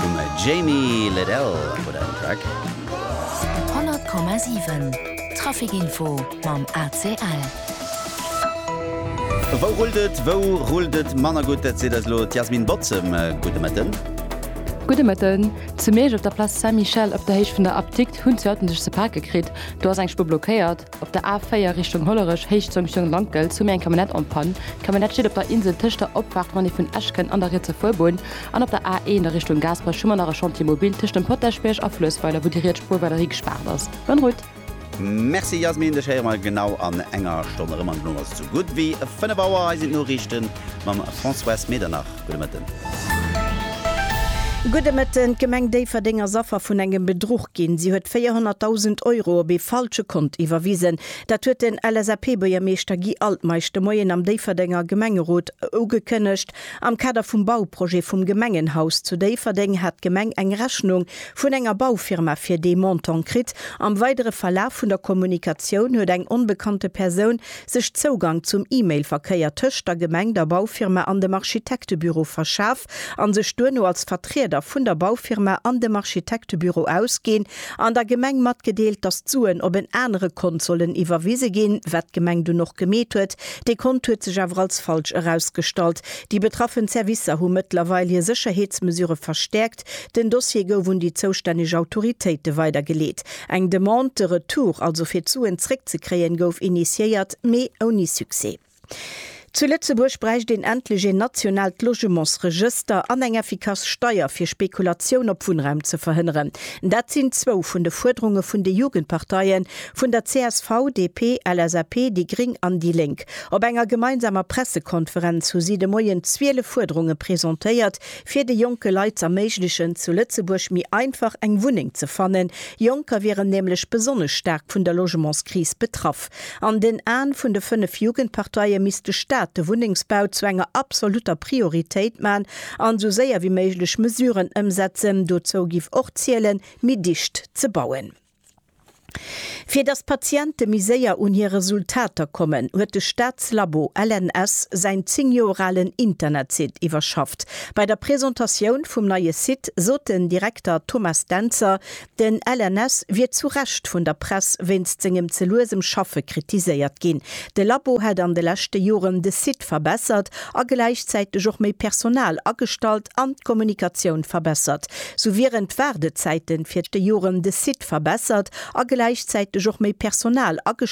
Vum Jamie Lidell wor dat en Track. 100,7 Trafic Info mam ACL. Wou rullt et? Wou rullt et manner gutt? Dat seet eis elo d'Yasmine Bozem. Gudde Mëtten. Gudde Mëtten. Zu Miersch op der Place Saint-Michel op der Héicht vun der Apdikt hunn zwou Autoen sech ze pake kritt. Do ass eng Spuer blockéiert. Op der A4 Richtung Hollerech, Héicht Jonction Lankels, hu mir eng Camionnette en Panne. D'Camionnette steet op der Insel tëscht der Opfaart Monnie vun Eschken an der rietser Fuerbunn. An op der A1 a Richtung Gaasperech hu mer nach e Chantier mobil tëscht dem Potäschbierg a Fluessweiler, wou déi riets Spuer weiderhi gespaart ass. Bonne route! Merci Yasmine, dech héiere mer genau an enger Stonn erëm an duerno ass et sou gutt wéi 5 Auer. Hei sinn d'Noriichten. mam Françoise Medernach. Gudde Mëtten. Gudde Mëtten. D'Gemeng Déifferdeng ass Affer vun engem Bedruch ginn. Si huet 400.000 Euro op ee falsche Kont iwwerwisen. Dat huet den LSAP-Buergermeeschter Guy Altmeisch de Moien am Déifferdenger Gemengerot ugekënnegt. Am Kader vum Bauprojet vum Gemengenhaus zu Déifferdeng hat d'Gemeng eng Rechnung vun enger Baufirma fir dee Montant kritt. Am weidere Verlaf vun der Kommunikatioun huet eng onbekannte Persoun sech Zougang zum E-Mail-Verkéier tëscht der Gemeng, der Baufirma an dem Architektebüro verschaf an sech duerno als Vertrieder vun der Baufirma an dem Architektebüro ausginn an der Gemeng matgedeelt, dass d'Suen op en anere Kont sollen iwwerwise ginn, wat d'Gemeng dunn och gemeet huet. Dee Kont huet sech awer als falsch erausgestallt. Déi betraffen Servicer hu mëttlerweil hir Sécherheetsmesure verstäerkt geschéckt. Den Dossier gouf un déi zoustänneg Autoritéite weidergeleet. Eng Demande de retour, also fir d'Suen zréckzekréien, gouf initiéiert, mee ouni Succès. Zu Lëtzebuerg bräicht een endlech een nationaalt Logementsregëster an eng effikass Steier, fir Spekulatioun op Wunnraum ze verhënneren. Dat sinn zwou vun de Fuerderunge vun de Jugendparteie vun der csv, DP, LSAP, déi gréng an déi lénk. Op enger gemeinsamer Pressekonferenz hu si de Moien 12 Fuerderunge presentéiert, fir de jonke Leit z'erméiglechen, zu Lëtzebuerg méi einfach eng Wunneng ze fannen. Jonker wieren nämlech besonnesch staark vun der Logementskris betraff. An den Aen vun de fënnef Jugendparteie misst de Staat de Wunnengsbau zu enger absolutter Prioritéit man an esou séier wéi méiglech Mesuren ëmsetzen. Dozou giff och zielen, méi dicht ze bauen. Fir datt d'Patiente méi séier un hir Resultater kommen, huet de Staatslabo LNS säin 10 Joer alen Internetsite iwwerschafft. Bei der Presentatioun vum neie Site sot den Direkter Thomas Dentzer, den LNS wier zu Recht vun der Press wéinst sengem ze luesem Schaffe kritiséiert ginn. De Labo hätt an de leschte Joren de Site verbessert a gläichzäiteg och méi Personal agestallt an d'Kommunikatioun verbessert. Sou wieren d'Waardezäiten fir d'Dejorem de Site verbessert a gläichzäiteg och méi Personal agestallt.